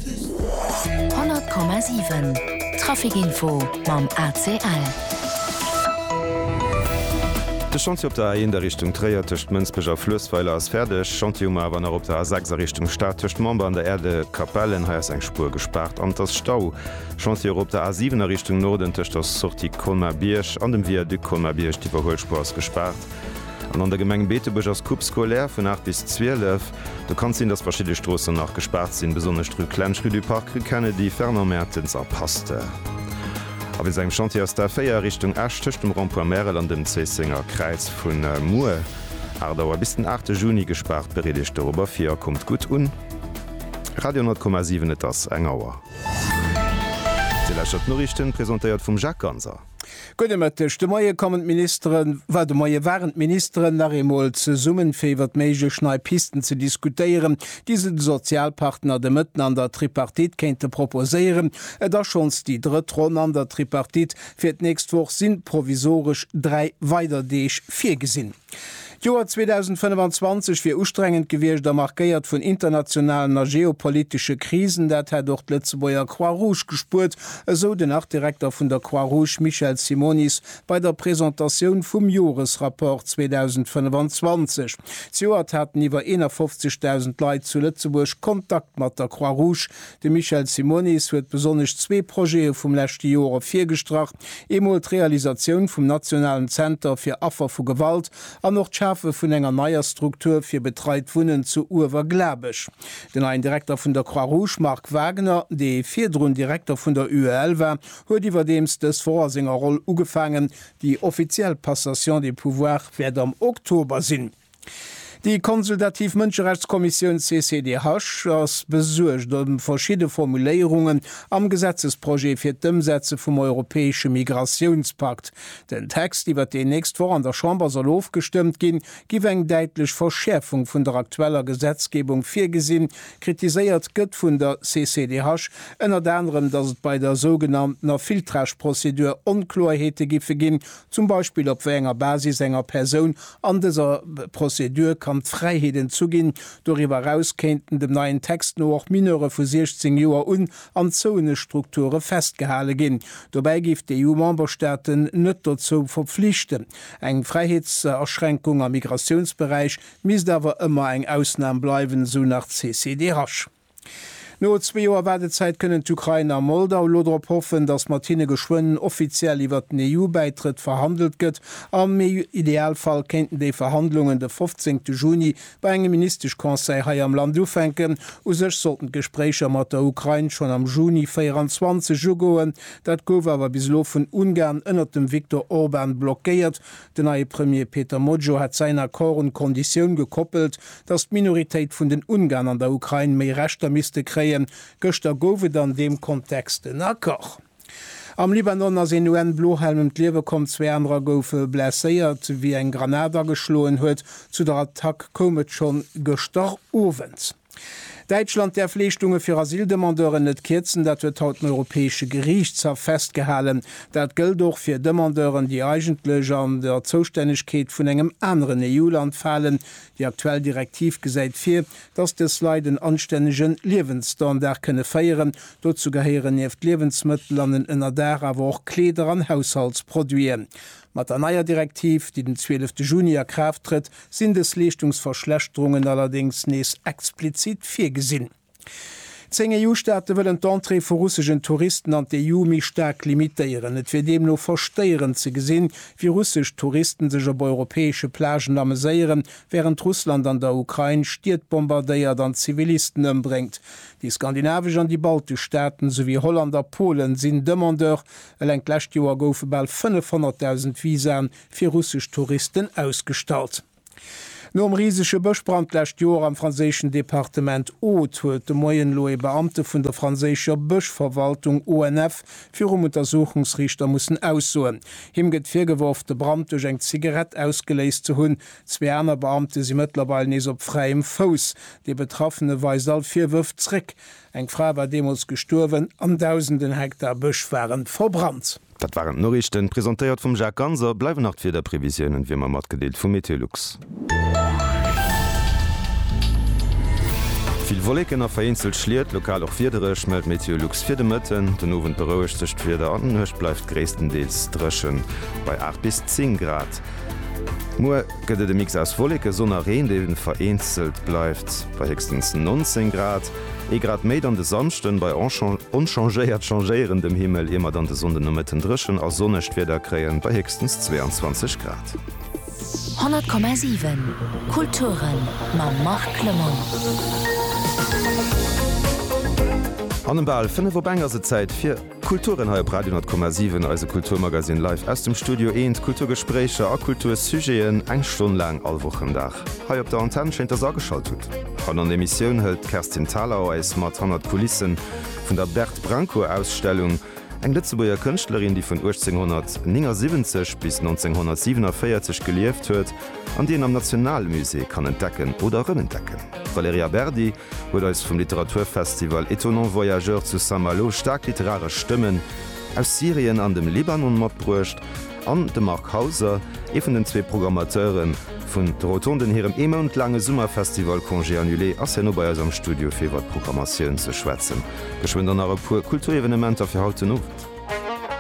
100,7 Trafic-Info mam ACL. De Chantier op der A 1 a Richtung Tréier tëscht Mënsbech a Fluessweiler ass fäerdeg. Chantier hu mer awer nach op der A 6 a Richtung Stad tëscht Member an der Erde Capellen. Hei ass eng Spuer gespaart an et ass Stau. Chantier och op der A 7 a Richtung Norden tëscht der Sortie Colmar-Bierg an dem Viaduc Colmar-Bierg. D'Iwwerhuelspuer ass gespaart. An an der Gemeng Beetebuerg ass Coupe scolaire vun 8 bis 12. Do kann sinn, datt verschidde Stroossen nach gespaart sinn, besonnesch d'Rue Klensch, Rue du Parc, Rue Kennedy, Fernand Mertens a Pasteur. A wéinst engem Chantier ass d'A4 a Richtung Esch tëscht dem Rond-point Märel an dem Zéissenger Kräiz vu muer 8 Auer bis den 8 Juni gespaart. Bereet Iech dorobber vir a kommt gutt un. Radio 10,7 Et ass eng Auer. Dir lauschtert d'Noriichten, presentéiert vum Jacques Ganser. Gudde Mëtteg. De Moie kommen d'Ministeren, war de Moie waren d'Ministeren nach eemol zesummen, fir iwwert méiglech nei Pisten ze diskutéieren, déi se de Sozialpartner de Mëtten an der Tripartite kéinte proposéieren. Et ass schonns déi drëtt Ronn an der Tripartite. Fir d'nächst Woch sinn provisoresch dräi weider Deeg virgesinn. D'Joer 2025 wier ustrengend gewiescht a markéiert vun internationalen a geopolitesche Krisen. Dat hätt och d'Lëtzebuerger Croix-Rouge gespuert, esou den Artdirekter vun der Croix-Rouge Michel Simonis bei der Presentatioun vum Joresrapport 2025. Zejoert haten iwwer 51.000 Leit zu Lëtzebuerg Kontakt mat der Croix-Rouge. De Michel Simonis huet besonnesch zwee Projete vum leschte Joer ervirgestrach. Eemol d'Realisatioun vum nationalen Zenter fir Affer vu Gewalt an och d'Schafe vun enger neier Struktur fir betreit Wunnen zu Uewerglabech. Den neien Direkter vun der Croix-Rouge, Marc Wagner, dee virdrun Direkter vun der UEL war, huet iwwerdeems dës Woch a senger Roll ugefaangen. Déi offiziell Passation des pouvoirs wäert am Oktober sinn. Déi konsultativ Mënscherechtskommissioun CCDH ass besuergt ëm verschidde Formuléierungen am Gesetzesprojet fir d'Ëmsetze vum europäesche Migratiounspakt. Den Text, iwwer deen nächst Woch an der Chamber soll ofgestëmmt ginn, giff eng däitlech Verschäerfung vun der aktueller Gesetzgebung virgesinn. Kritiséiert gëtt vun der CCDH ënnert anerem, datt et bei der sougenanntener Filtrage-Prozedur Onkloerheete giffe ginn, zum Beispill op wéi enger Basis enger Persoun an dëser Prozedur kann d'Fräiheet entzu ginn. Doriwwer eraus kéinten dem neien Text no och Mineure vu 16 Joer un an zouene Strukture festgehale ginn. Dobäi géif d'EU-Memberstaaten net dozou verpflichten. Eng Fräiheetsaschränkung am Migratiounsberäich misst awer ëmmer eng Ausnam bleiwen, esou nach d'CCDH. No zwee Joer Waardezäit kënnen d'Ukrain a Moldau elo drop hoffen, datt mat hinne geschwënn offiziell iwwert den EU-Bäitrëtt verhandelt gëtt. Am Idealfall kéinten déi Verhandlungen de 15 Juni bei engem Ministesch-Conseil hei am Land ufänken. U sech sollten d'Gespréicher mat der Ukrain schonn am Juni 24 ugoen. Dat gouf awer bis elo vun Ungarn ënnert dem Viktor Orban blockéiert, Den neie Premier Peter Mojó hat säin Accord un d'Konditioun gekoppelt, datt d'Minoritéit vun den Ungarn an der Ukrain méi Rechter misste kréien. Gëschter gouf et an deem Kontext en Accord. Am Libanon ass een UN-Blohelm ëm d'Liewe komm, zwee anerer goufe blesséiert, wéi eng Granat ageschloen huet. Zu der Attack koum et schonn gëschter Owend. Däitschland däerf Leeschtunge fir Asyldemandeuren net kierzen, dat huet haut den Europäesche Geriichtshaff festgehalen. Dat gëllt och fir Demandeuren, déi eigentlech an der Zoustännegkeet vun engem aneren EU-Land falen. Déi aktuell Direktiv gesäit vir, datt dës Leit en anstännege Liewensstandard kënne féieren. Dozou gehéieren nieft Liewensmëttel an en Ënnerdaach awer och Kleeder an Haushaltsproduiten. Mat der neier Direktiv, déi den 12 de Juni a Kraaft trëtt, sinn dës Leeschtungsverschlechterungen allerdéngs nees explizit virgesinn. Zéng EU-Staate wëllen d'Entrée vu russegen Touristen an d'EU méi staark limitéieren. Et wier deemno verstéierend ze gesinn, wéi russesch Touristen sech op europäesche Plagen ameséieren, wärend Russland an der Ukrain Stied bombardéiert an Zivilisten ëmbréngt. Déi skandinavesch an déi baltesch Staaten, souwéi Holland a Polen sinn Demandeur Eleng d'lescht Joer goufe bal 500.000 Visaen fir russesch Touristen ausgestallt. Nom risege Bëschbrand d'lescht Joer am franséischen Departement Aude huet de Moien elo ee Beamte vun der franséischer Bëschverwaltung, ONF, virum Untersuchungsriichter mussen aussoen. Him gëtt virgeworf, de Brand duerch eng Zigarett ausgeléist ze hunn. Zwee aner Beamte si mëttlerweil nees op fräiem Fouss. Dee Betraffene weist all Virwërf zréck. Eng Fra war deemools gestuerwen an dausenden Hektar Bësch waren verbrannt. Dat waren d'Noriichten, presentéiert vum Jacques Ganser. Bleiwen nach d'Wiederprevisiounen, wéi mer matgedeelt, vu Meteolux. Vill Wolleken a vereenzelt Schliet, lokal och wiedereg, mellt Meteolux fir de Mëtten. Den Owend berouegt sech d'Wieder an d'Nuecht bleift gréisstendeels dréchen bei 8 bis 10 Grad. Muer. gëtt et e Mix aus Wolleke, Sonn a Reen, deen vereenzelt bleift bei héchstens 19 Grad. Ee Grad méi dann de Samschden bei onchangéiert changéierendem Himmel, ier mer dann de Sonnden no Mëtten dréchen a sonnegt Wieder kréien bei héchstens 22 Grad. 100,7 Kulturen mam Marc Clement. An em bal 5 op eng ass et Zäit fir. Kulturen hei op Radio 10,7, eise Kulturmagazine live aus dem Studio Eent. Kulturgespréicher a Kultursujeten eng Stonn laang all Wochendag hei op der Antenn. Schéin, dass Der ageschalt hutt. Haut an der Emissioun hëlt d'Kerstin Thalau eis mat hannert d'Kulisse vun der Berthe Brancourt-Ausstellung. Eng Lëtzebuerger Kënschtlerin, déi vun 1879 bis 1947 gelieft huet an déi een am Nationalmusée kann entdecken oder rëmentdecken. D'Valerija Berdi huet eis vum Literaturfestival Étonnants Voyageurs zu Saint-Malo staark literaresch Stëmmen aus Syrien an dem Libanon matbruecht an de Marc Hauser, ee vun den zwee Programmateure vun de Rotonden, hirem ee Mount laange Summerfestival Congé annulé, ass herno bei eis am Studio fir iwwer d'Programmatioun ze schwätzen. Geschwënn dann nach e puer Kulturevenementer fir haut den Owend.